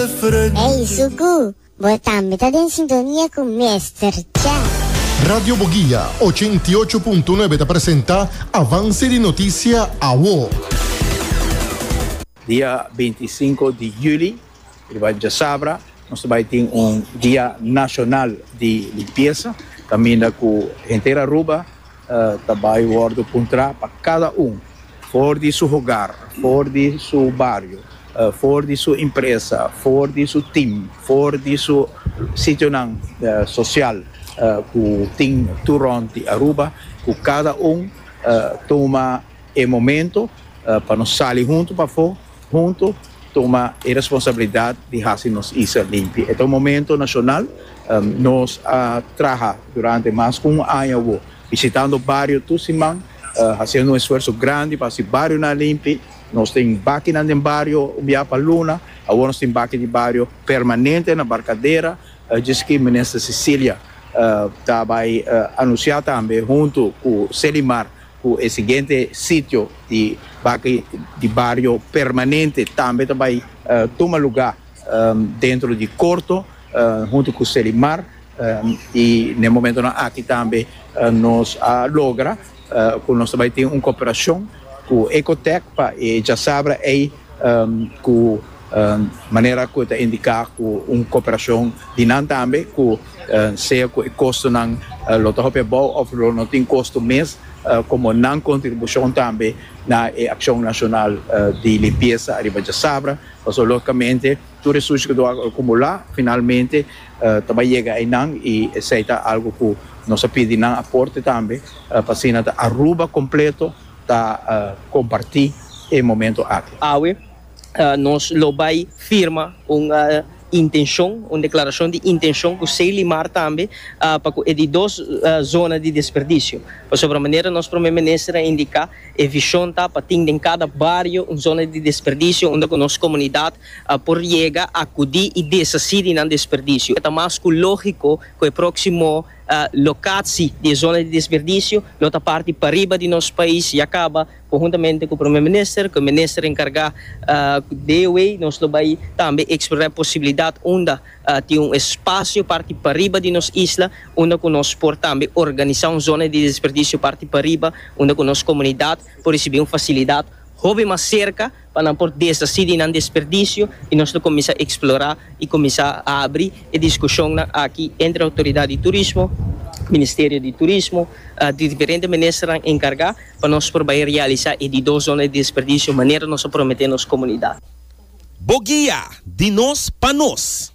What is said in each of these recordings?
Ey Suku, bo tambe ta den sintonia cu Mester Cha. Radio Boguia ochenta i ocho punto nuebe ta presenta Avance di Noticia Awo. Dia binti i sinku di juli riba djasabra nos ta bai tin un dia nashonal di limpiesa kaminda ku henter Aruba. ta bai wòrdu puntrá pa kada un, for di su hogar, for di su bario, for di su impresa, for di su tim, for di su sitionan sosial ku tin tur rònt di Aruba, ku kada un tuma. E momento pa nos sali huntu pafó, huntu tuma e responsabilidat di hasi nos isla limpi. E ta un momento nashonal. Nos a traha durante mas ku un aña awó bisitando bario tur siman, hasiendo un esfuerso grandi pa hasi barionan limpi. Nos tin bakinan den bario un biaha pa luna, awor nos tin baki di bario permanente na Barkadera, djis ki Minister Cecilia ta bai anunsiá tambe huntu ku Selimar Ku e siguiente sitio di baki di bario permanente tambe ta bai tuma luga dentro di korto huntu ku Selimar i na e momentonan aki tambe nos a logra ku nos ta bai tin un koperashon ku Ecotec pa e djasabra ei. ku manera ku e ta indiká ku un koperashon di nan tambe ku sea ku e kostonan lo ta hopi abou òf lo no tin kosto mes komo nan kontribushon tambe na e akshon nashonal di limpiesa ariba dje sabra pasobra lógikamente tur e sushi ku lo akumulá finalmente ta bai yega einan i esei ta algu ku nos a pidi nan aporte tambe pa asina ta Aruba kompleto. ta comparti e momento aki. Awe nos lo bay firma un intencion, un declaracion di intencion cu Ceilimar tambe pa cu e di dos zona di desperdicio. Pasobra manera nos Prome Minister a indica e vision ta pa tin den cada bario un zona di desperdicio unda cu nos comunidad por yega, acudi y deshaci di nan desperdicio. Ta mas cu logico cu e proximo Lokatsi di e zona di desperdisio lo ta parti pariba di nos pais ya kaba konhuntamente ku Prome Minister ku e Minister enkargá de ewei nos lo bai tambe eksplorá e posibilidat unda tin un espasio parti pariba di nos isla unda ku nos por tambe organisá un zona di desperdisio parti pariba unda ku nos komunidat por risibi un fasilidat hopi mas serka. pa nan por desasí di nan desperdisio i nos lo kuminsá eksplorá i kuminsá abri e diskushonnan aki entre Outoridat di Turismo, Ministerio di Turismo, di diferente ministernan enkargá pa nos por bai realisá e di dos zona di desperdisio manera nos a prometé nos komunidat. Bo guia di nos pa nos.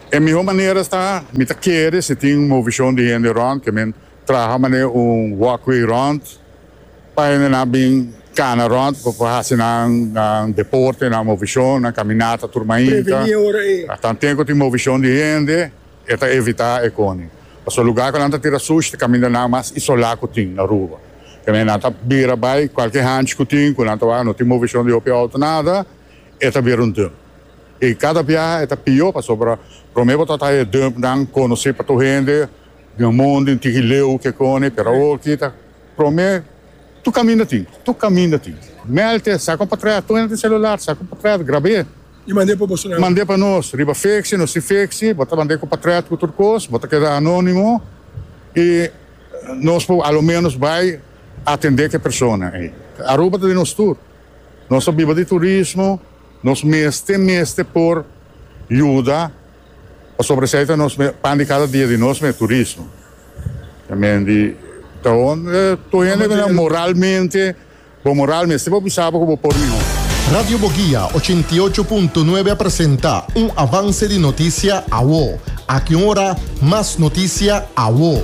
E mihó manera ta, mi ta kere si tin un movishon di hende rònt ke men traha manera un walkway rònt pa hendenan bin kana rònt pa por hasi nan nan deporte, nan movishon, nan kaminata tur mainta. Tan te ku tin movishon di hende e ta evitá e koni. Pasobra lugá ku nan ta tira sushi ta kaminda nan mas isolá ku tin Aruba. Te men nan ta bira bai kualke hanchi ku tin ku nan ta wak no tin movishon di hopi outo nada e ta bira un dùn. I kada biaha e ta pió pasobra promé bo ta haña e dumpnan konosí pa tur hende den e mondi, un tiki leu o kikoni, pero awor aki ta promé tur kaminda tin, tur kaminda tin. Melte, sa kon pa trae tur hende tin selular, sa kon pa trae, grab'é. I mand'é pa boso nan. Mand'é pa nos, riba fiksi, nos tin fiksi, bo ta mand'é ku pa trae ku tur kos, bo ta keda anónimo i nos por a lo ménos bai atendé ku e persona ei. Aruba ta di nos tur, nos ta biba di turismo. Nos mester mester por yuda pasobra esei ta nos pan di kada dia di nos e turismo. E menti ta on tur hende ta nan moralmente bo moral mester bo bisa bo ku bo por mihó. Radio Boguia ochenta i ocho punto nuebe a presenta un avanse di notisia awo. Aki un ora mas notisia awo.